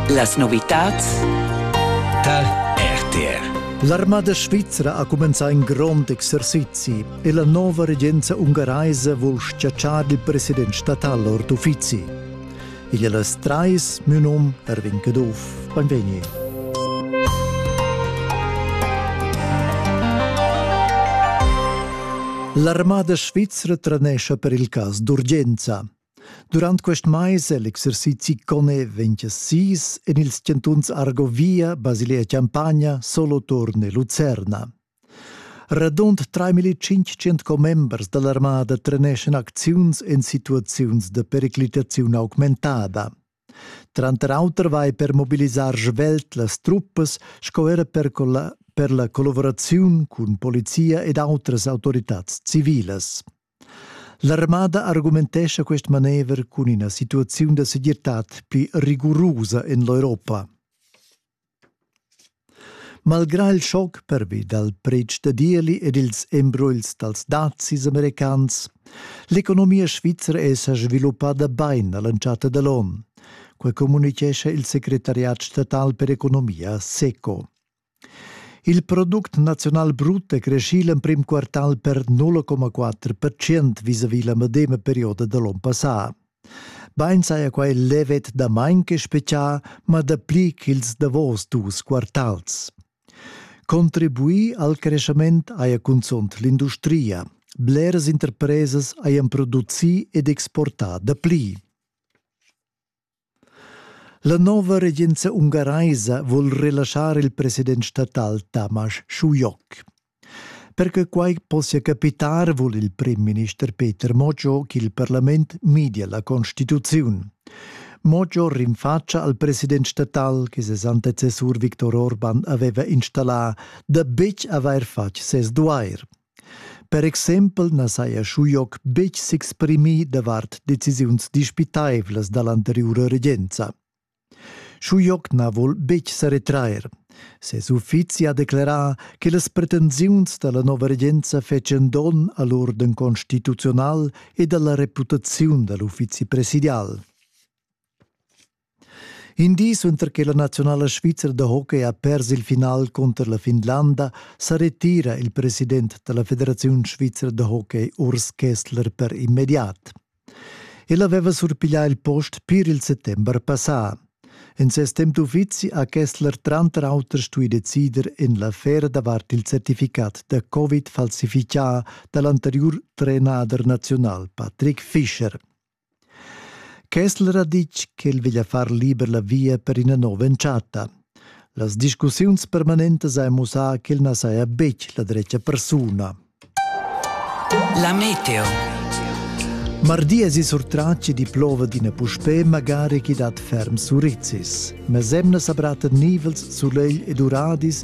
Las novitads dal RTR L'armada svizra ha cumenzà in grond exercizi e la nova regenza ungaraisa vul schiacciar il president statal ord uffizi. Igl è las trais, mio num Erwin Caduff. Benvegni. L'armada svizra trenescha per il cas d'urgenza. Durant quest mais è l'exercizi Cone 26 en ils chantuns Argovia, Basilea-Champagna, Soloturn e Lucerna. Radund 3500 commembers da l'armada treneschan acziuns en situaziuns da periclitaziun augmentada. Tranter auter vai per mobilisar svelt las truppas sco era per, per la collaboraziun cun polizia ed autras autoritads civilas. L'armada argumentescha quest manever cun ina situaziun da segirtad pli rigurusa en l'Europa. Malgrà il schoc pervi dal pretsch da dieli ed ils embrugls dals dazis americans, l'economia svizra è sa sviluppada bain a l'entschatta da l'onn. Quai communitgescha il secretariat statal per economia SECO. Il product naziunal brut è creschì l'emprim quartal per 0,4 percent visavi la medema perioda da l'onn passà. Bain saja quai levet damain che spezià, ma dapli ch'ils davos dus quartals. Contribuì al creschament haja cunzunt l'industria. Bleras interpresas hajan producì ed exportà dapli. La nova regenza ungaraisa vul relaschar il president statal Tamas Schuyoc. Per che quai possia capitar vul il primminister Peter Moggio ch'il parlament midia la constituziun. Moggio rinfaccia al president statal che ses antecessur Viktor Orban aveva installà da betg avair fatg ses duair. Per exempel na saja Schujoc betg s'exprimì davart decisiuns dispitaivlas da l'anteriura regenza. Schujoc na vul betg sa retrair. Ses uffizi ha declerà che las pretensiuns da la nova regenza fetschan donn a l'urden constituzional ed a la reputaziun da l'uffizi presidial. In di suenter che la naziunala svizra da hockey ha pers il final cunter la Finlanda sa retira il president da la Federaziun svizra da hockey Urs Kessler per immediat. El aveva surpiglià il post pir il settember passà. En ses temp d'uffizi ha Kessler tranter auter stuì decider en l'affera davart il certificat da Covid falsifichà da l'anteriur trenader naziunal Patrick Fischer. Kessler ha ditg ch'el veglia far liber la via per ina nova entschatta. Las discussiuns permanentas han mussà ch'el na saja betg la dretga persuna. La meteo. Mardi es i surtrat chi di plova d'ina puspè magari chi dat ferm surizis. Mes emnas abratten nivels, sulegl ed uradis